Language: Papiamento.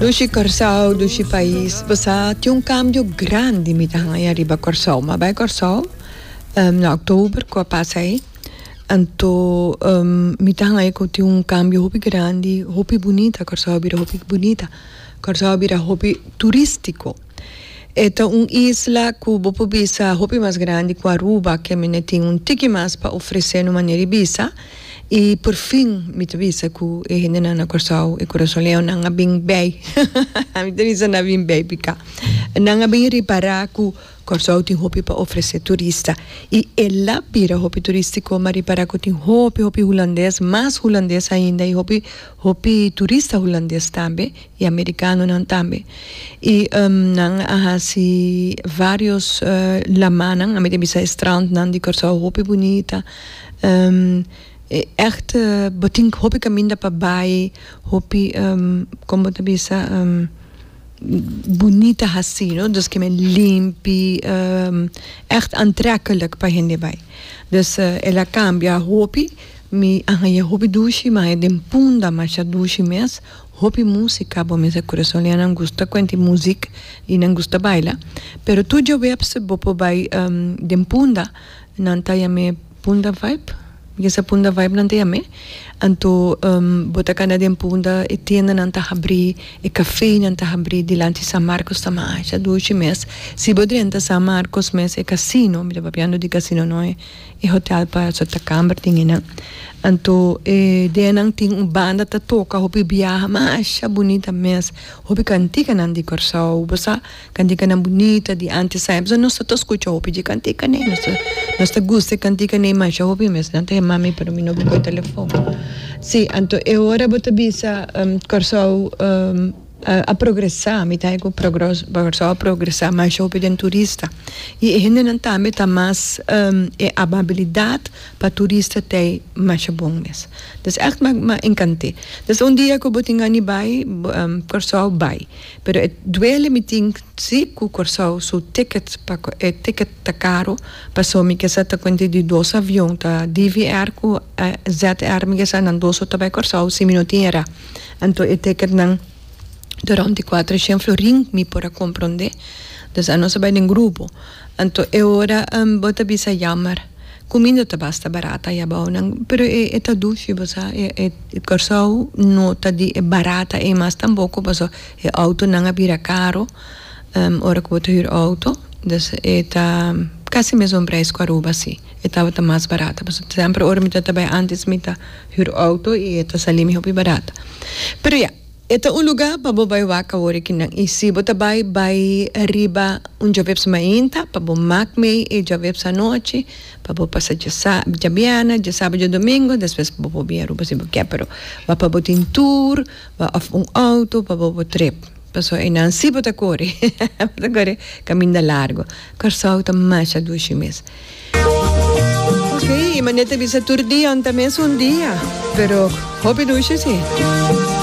Dushi Kòrsou, dushi pais, bo sa tin un kambio grandi mi ta hanga ai ariba Kòrsou. Mi a bai Kòrsou na oktober ku a pasa ei, anto mi ta hanga ku tin un kambio hopi grandi, hopi bunita, Kòrsou a bira hopi bunita, Kòrsou a bira hopi turistiko. E ta un isla ku bo por bisa hopi mas grandi ku Aruba, ke mi ne tin un tiki mas pa ofresenu manera di bisa. I por fin mi ta bisa ku e hendenan na Kòrsou, e kurasoneño nan a bin bei, mi ta bisa nan a bin bei pika nan a bin repará ku Kòrsou tin hopi pa ofresé turista. I e la bira hopi turístiko, mi a repará ku tin hopi hopi hulandes, mas hulandes ainda i hopi hopi turista hulandes tambe. y americanonan tambe y nan a haci varios lamanan a mi ta bisa e strandnan di Curaçao hopi bunita e echt bo tin hopi caminda pa bay hopi como bo ta bisa bunita haci no dus kimen limpi echt antrekkelijk pa hende bay dus ela cambia hopi mi a haya hopi dushi mi a haya den punda masha dushi mes. Hopi músika, bo mester kurason liha nan gusta kuenti e muzik i nan gusta baila, pero tur djoweps bo por bai den Punda, nan ta yam'é Punda Vibe, mi kisa Punda Vibe nan ta yam'é, anto bo ta kanda den Punda e tiendanan ta habrí, e kafeinan ta habrí dilanti San Marcos ta masha dushi mes, si bo drenta San Marcos mes e kasino, mi ta papiando di kasino noe. E hotel pa su ta kamber den eynan. Anto e dianan tin un banda ta toka hopi biaha masha bunita mes. Hopi kantikanan di Kòrsou, bo sa, kantikanan bunita di antes sa. P'esei nos ta ta skucha hopi dje kantikanei. Nos ta, nos ta gusta e kantikanei masha hopi mes. Nan ta yama mi pero mi no bin ku e telefòn. Sí, anto e ora bo ta bisa Kòrsou. a progresá, mi ta haña ku Kòrsou a progresá mas hopi den turista i e hendenan tambe ta mas e amabilidat pa turista ta e masha bon mes dus ègt m'a enkant'é dus un dia ku bo tin gana di bai Kòrsou bai pero e duele mi tin si ku Kòrsou su ticket e ticket ta karu paso mi ke sa ta kuente di dos avion ta DVR ku ZR mi ke sa nan dos so ta bai Kòrsou si mi no tin e ra. Anto e teketnan durante e kuater shen florin mi por a komprondé. Dus anos a bai den grupo. Anto e ora bo ta bisa yammer kuminda ta basta barata ya bounan pero e e ta dushi bo sa e e Kòrsou no ta di e barata ei mas tampoko paso e outonan a bira karo ora ku bo ta hür outo. Dus e ta kasi mesun preis ku Aruba si. E tabata mas barat. Pasobra semper ora mi ta ta bai antes mi ta hür outo i e ta salimi hopi barat. Pero ya, e ta un lugá pa bo bai wak awor e kinan. I si bo ta bai, bai riba un djoaveps mainta pa bo mak mei e djoaveps anochi pa bo pasa djabièrnè, djasabat, djadomingo despues pa bo por bini Aruba si bo ke. Pero wak pa bo tin tur wak òf un outo pa bo por trip. Pasobra enan si bo ta kore, bo ta kore kaminda largu. Kòrsou ta masha dushi mes. Oke, i manera ta bisa tur dianan ta mes un dia, pero hopi dushi si.